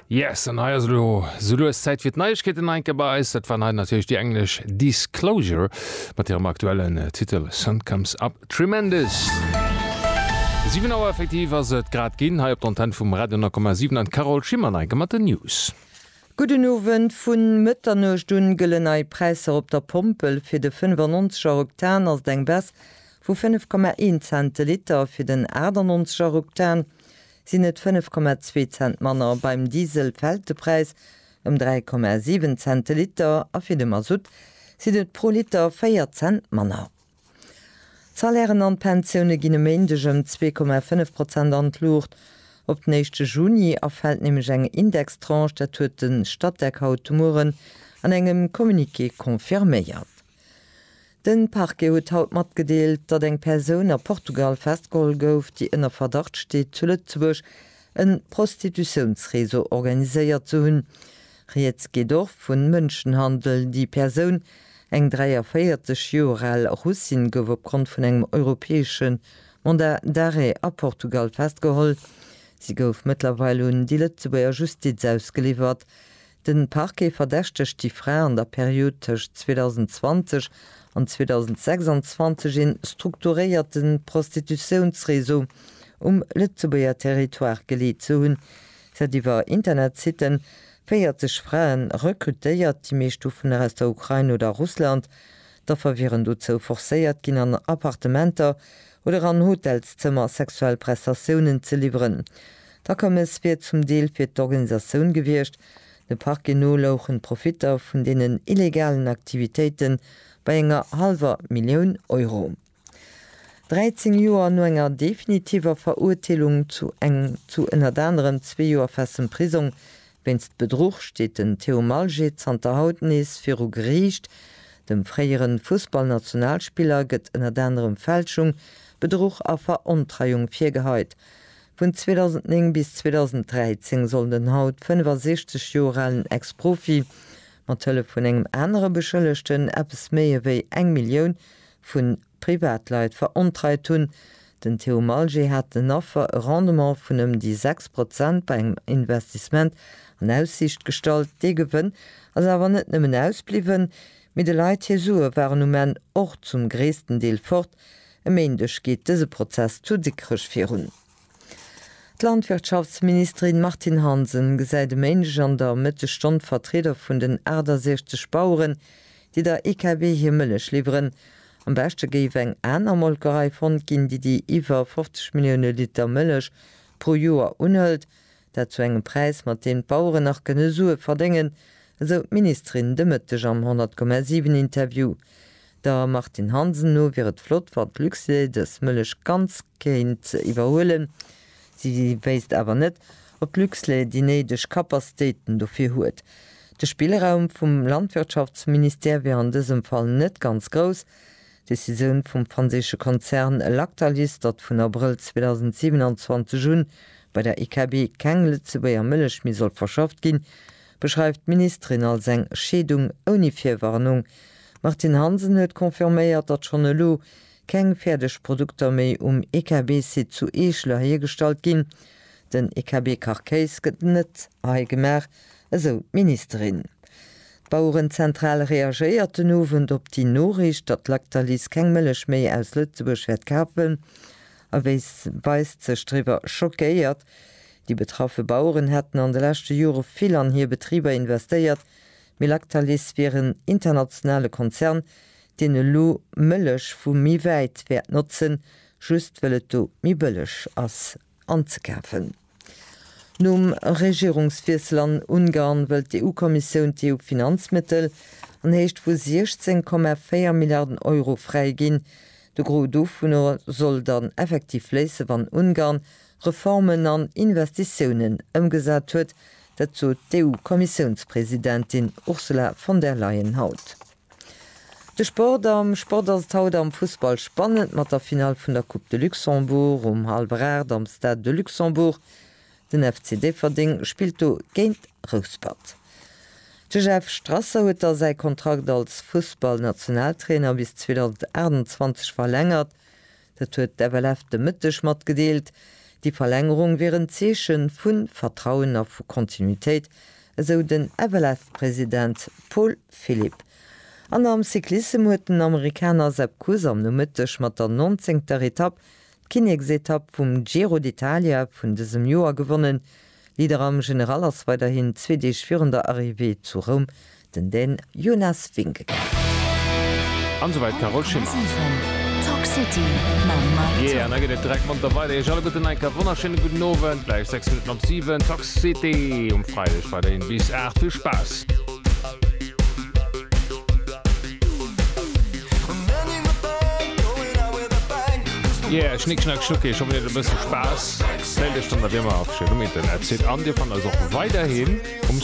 Yes, an hei ass elo sou lues Zäit fir d'Neiegkeeten hei enke bei eis. Dat waren hei natierlech déi englesch Disclosure mat hirem aktuellen Titel Sun Comes Up Tremendous. Siwen Auer effektiv ass et grad ginn hei op der Antenn vum Radio 9,7 an d'Carole Schimmer an enke mat den News. Gudden Owend, Vun Mëtternuecht un gëllen nei Präisser op der Pompel. Fir de 95 er Oktan ass et eng Baisse vu 5,1 Cent de Liter, fir den 98 er Oktan, sinn et 5,2 Cent manner, beim Diesel fält de Präis ëm 3,7 Cent de Liter a fir de Masutt sinn et pro Liter 4 Cent manner. D'Salairen an d'Pensioune ginn e Méindeg ëm 2,5 Prozent an d'Luucht. Op den éischte Juni erfält nämlech eng Indextranche, dat huet de Statec haut de Mueren an engem Communiqué confirméiert. De Parquet huet haut matgedeelt, datt eng Persoun a Portugal festgeholl gouf, déi ënner Verdacht steet, zu Lëtzebuerg e Prostitutiounsreseau organiséiert ze hunn. Rieds geet och vu Mënschenhandel. Déi Persoun, eng 43 Joer al Russin, gouf opgrond vun engem europäesche Mandat d'arrêt a Portugal festgeholl. Si gouf mëttlerweil un déi Lëtzebuerger Justiz ausgeliwwert. De Parquet verdächtegt déi Fra an der Period tëscht 2020 an 2026 ee strukturéierte Prostitutiounsreseau um Lëtzebuerger Territoire geleet ze hunn. Si hat iwwer Internetsitten 40 Frae rekrutéiert, déi meescht dovunner aus der Ukrain oder Russland. D'Affer wieren dozou forcéiert ginn, an Appartementer oder an Hotelszëmmer sexuell Prestatiounen ze liwweren. D'Akommes wier zum Deel fir d'Organisatioun gewiescht, de Parquet no louchen d'Profitter vun deenen illegalen Aktivitéite bei enger hallwer Millioun Euro. 13 Joer no enger definitiver Verurteelung zu eng zu ënnert anerem zwee Joer festem Prisong wéinst Bedruch steet den Theo Malgé zanter haut nees viru Geriicht. Dem fréiere Fussballnationalspiller gëtt ënnert anerem Fälschung, Bedruch a Verontreiung virgeheit. Vun 2009 bis 2013 soll den haut 65 Joer alen Ex-Profi mat Hëllef vun engem anere Beschëllegten eppes méi ewéi eng Millioun vu Privatleit verontreit hunn. Den Theo Malger hat den Affer e Rendement vun ëm déi 6 Prozent bei engem Investissement an Aussiicht gestallt. Dee Gewënn ass awer net nëmmen ausbliwwen, mee de Leit hir Sue waren um Enn och zum gréissten Deel fort, E Méindeg geet dëse Prozess zu Dikrech virun. D'Landwirtschaftsministerin Martine Hansen gesäit e Méindeg an der Mëttegstonn d'Vertrieder vun den 68 Baueren, déi der EKB hir Mëllech liwweren. Am beschte géif eng aner Molkerei fonnt ginn, déi déi iwwer 50 Millioune Liter Mëllech pro Joer unhëlt. Dat zu engem Präis, mat deem d'Baueren nach kënne Sue verdéngen, esou d'Ministerin de Mëtteg am 100,7 Interview. Der Martine Hansen no wier et flott, wann d'Luxlait dës Mëllech ganz kéint iwwerhuelen. Si wéisst awer net, ob d'Luxlait déi néideg Kapaztéiten dofir huet. De Spillraum vum Landwirtschaftsministère wier an dësem Fall net ganz grouss. D'Decisioun vum franséische Konzern Lactalis, datt vun Abrëll 2027 un bei der IKB keng Lëtzebuerger Mëllech méi soll verschafft ginn, beschreift d'Ministerin als eng Scheedung ouni Virwarnung. D'Martine Hansen huet confirméiert, datt schonn elo keng fäerdeg Produkter méi um IKB-Site zu Eeschler hiergestallt ginn. Den IKB-Kachkéis gëtt net hei gemaach, esou d'Ministerin. D'Bauerenzentral reagéiert den Owend op déi Noriicht, datt Lactalis keng Mëllech méi aus Lëtzebuerg wäert kafen a weist sech driwwer schockéiert. Déi betraffe Baueren hätten an de leschte Jore vill an hir Betriber investéiert, mee Lactalis wier en internationale Konzern, deen elo Mëllech vu méi wäit wäert notzen, just wëll et do méi bëlleg ass. anzekafen. Nom Regierungswiessel an Ungarn wëllt d'EU-Kommissioun d'EU-Finanzmëttel an Héicht vu 16,4 Milliarden Euro fräiginn. De Gros dovunner soll dann effektiv fléisse wann Ungarn Reformen an Investitiounen ëmgesat huet. Dat sot d'EU-Kommissiounspresidentin Ursula von der Leyen haut. De Sport am Sport ass et haut am Fussball spannend mat der Finall vun der Coupe de Luxembourg um hallwer 8 am Stade de Luxembourg. Den FC Déifferdeng spillt do géint Rouspert. De Jeff Strasser huet da säi Kontrakt als Fussballnationaltrainer bis 2028 verlängert. Dat huet d'FLF de Mëtteg matgedeelt. Déi Verlängerung wier en Zeeche vu Vertrauen a vu Kontinuitéit, esou den FLF-President Paul Philipp. An am Cyclissem huet den Amerikaner Sepp Kuss am Nomëtteg mat der nonzéngter Etapp d'Kinneksetapp vum Giro d'Italia vun dësem Joer gewonnen. Leader am General ass weiderhin zwee Deeg virun der Arrivée zu Roum Den den Jonas Vingegaard. An esou weit Carole Schimmer. Yeah, an da geet et direkt monter weider. Iech alleguerten enk e wonnerschéine gudden Owend. Gläich 6 Minutten op 7, Tox City um Freideg weiderhin bis 8. Vill Spaass! Yeah, Schnick Schnack Schnucki, ech hoffen dir hat e bësse Spaass. Mellt iech dann nach wéi ëmmer a verschiddenen Internetsiten an dir fannt eis och weiderhin um.